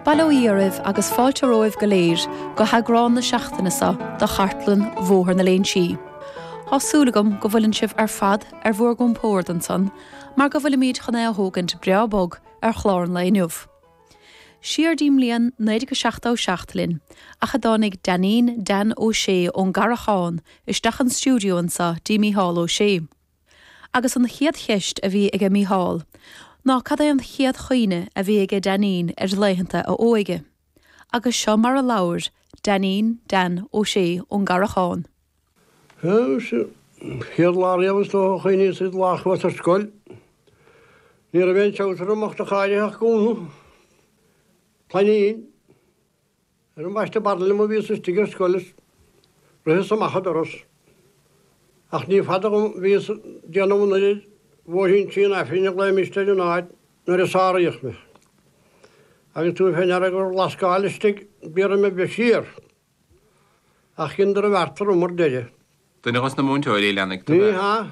Bail ó Dhia oraibh agus fáilte romhaibh go léir go heagrán na seachtaine seo de Chartlann Bhóthar na Léinsí. Tá súil agam go bhfuileann sibh ar fad ar bhur gcompórd ansan mar go bhfuilimíd chun é a thógaint breá bog ar chlár an lae inniu. Siar dtí'n mbliain 1977 linn ach a dtáinig Dainín Dan Ó Sé ón gCarrachán isteach an stiúideo anso dtí Mícheál Ó Sé. Agus an chéad cheist a bhí aige Mícheál ná cad é an chéad chuimhne a bhí aige Dainín ar laethanta a óige. Agus seo mar a labhair Dainín, Dan, Ó Sé ón gCarrachán. Is é an chéad lá riamh is dócha a chuimhníos é an lá a chuas ar scoil. Ní raibh aon treabhsar orm in aon chor ach gúna plainín. Ar mo bhaisteadh barr liom a bhíos istigh ar scoil is ritheas amach an doras. Ach ní fada dhom bhíos ag déanamh anoir ar Bhóithrín Tí an Aifrinn a ghlaoimís ar an áit nuair a sáraíodh mé. Agus tabhair fé ndeara gur lascáil istigh bíorra me bheith siar. Ach cinn darbh fheartar umar deireadh. Duine dhos na múinteoirí a leanfaidh do bheith. Ní hea.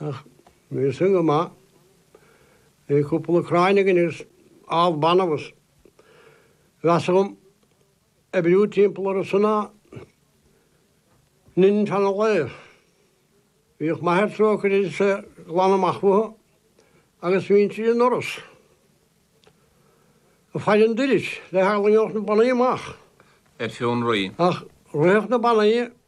Ach bhí sin go maith. Bhí cúpla cráin againn agus ál banbh agus mheasa dhom oibriú timpeall orthu ná linn fan an lae. Bhíodh m'athair trócaire air is é ag glanadh amach futhu agus bhínnse i ndoras. Ag faire an doiris le heagla go n-éalódh na banaí amach. Ar fionraí. Ach ritheadh na banaí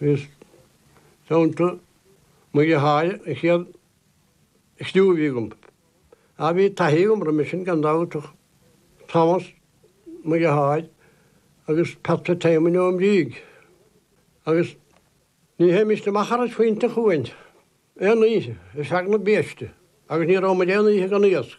I dteannta muid a chaill an chéad chriú a bhí agam. Ach bhí taithí agam roimis sin gan dabht ach Thomas muid a chaill agus Pat Fitzsimon ón Bhrígh. Agus ní hé Mr Macharas fónta chugainn aon oíche ar feadh na biaiste agus ní raibh muid aon oíche gan iasc.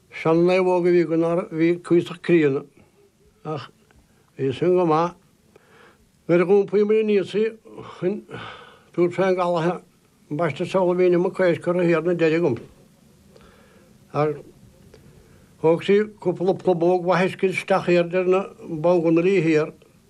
Sean naomhóg a bhí againn a bhí cuíosach críonna ach bhí sin go maith. Nuair a dh'iompaíomair aníos í chun tabhairt fén gcaladh ambaiste seoladh bhí inniu mo chois curtha thiar ina deireadh agam agus thóg sí cúpla plubóg mhaith uisce isteach thiar deir na bánghunairí thiar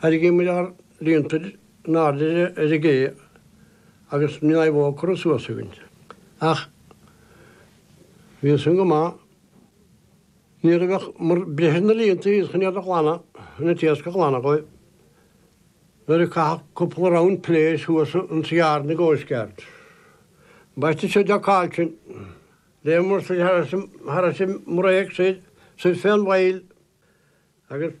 Tharraingíodh muid ár líonta in airde ar an gcé agus bhí an naomhóg curtha suas againn. Ach bhíodh san go maith. Nuair a bhíomar ag breith ar na líonta thíos chun iad a ghlanadh an t-iasc a ghlanadh dhíobh. Nuair a caitheadh cúpla round piléar suas ins yard na gcoastguard. Ambaiste seo deoc cailcin. Léadh mur suidh thar ais mur éag suidh, suidh fé an bhfaill agus.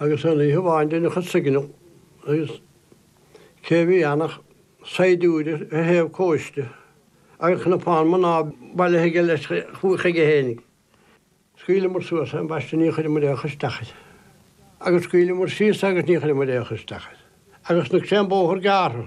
Agus aon oíche amháin deineadh an signal agus cé a bhí ann ach saighdiúir ar thaobh cóiste agus cnapán mná bailithe aige leis chuige féin. Scaoileamar suas as an bpaiste ní chuireamar aon chur isteach air agus scaoileamar síos agus ní chuireamar aon chur isteach air agus sna cré an bóthar gearrtha.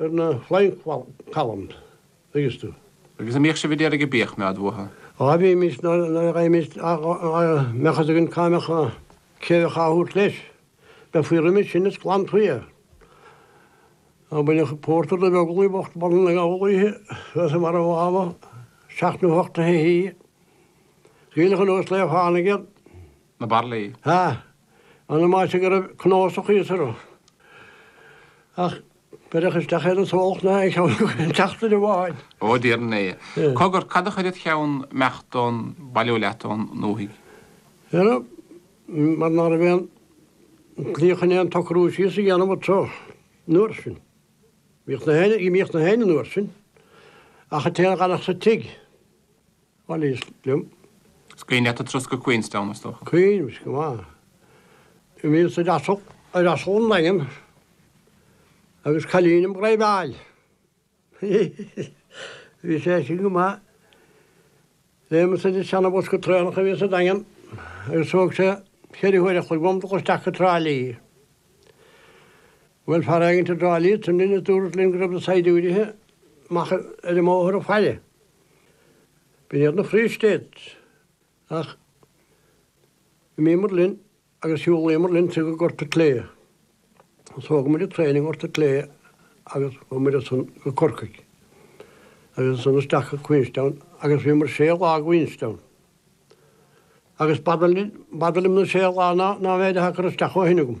ar na Flying Columns, an dtuigeann tú. Agus a' mbíodh sibh a' déarfaidh a' bíodh mé a'd uathu? Á bhímis nuair a bhímis ach go mbeadh fhios againn cá mbeadh, cé a bheadh a' thabhairt leis. Bheifí roimis sin is ghlanfaí é. Á baineadh pórtar do Bheaglaoi bocht bun na gabhal oíche, thuas i mbarra an Mháma, seacht nó hocht a' hoíche. Is aoileach an uasal é a tháinig air. na baraillí. Ha! An a maise go raibh cnósach thíos orthu. Ach beireadh isteach iad is thógadh na a cheann tseachtain amháin. Ó, deir an Aodh. Cogar, cad a chuir id cheann imeacht nó bailiú leat ó'n ndúthaigh? Dheara, mar ná raibh aon tslí chun aon tsocrú síos a dhéanamh annso an uair sin. Bhíodh na héin, bhíodh na héin an uair sin, ach an t-éinne a dh'fhanfadh sa tigh. Bhal is liom. Is cuimhin leat an turas go Queenstown, is dócha? Cuimhin, is cuma. Do bhíos ar asal 'on Daingean agus cailín im' dhraoibheáil. Bhí sé sin go maith. Léimeas ar an seana-bhosca traenach a bhí sa Daingean agus thóg sé cheithre huaire a chloig dhom dul isteach go Trá Lí. Bhuail fear éigin i dTrá Lí linn is dúirt sé linn go raibh na saighdiúirithe amach ar an mbóthar ag faire. B'in iad na Free States. Ach d'imíomar linn agus shiúlaíomar linn go Gort a' tSlé. Agus thógamar an traein i nGort a' tSlé agus chuamar ansan go Corcaigh. Agus ansan isteach go Queenstown agus bhíomar sé lá i gQueenstown. Agus b'fhada liom na sé lá ná an méid atá curtha isteach ó shin agam.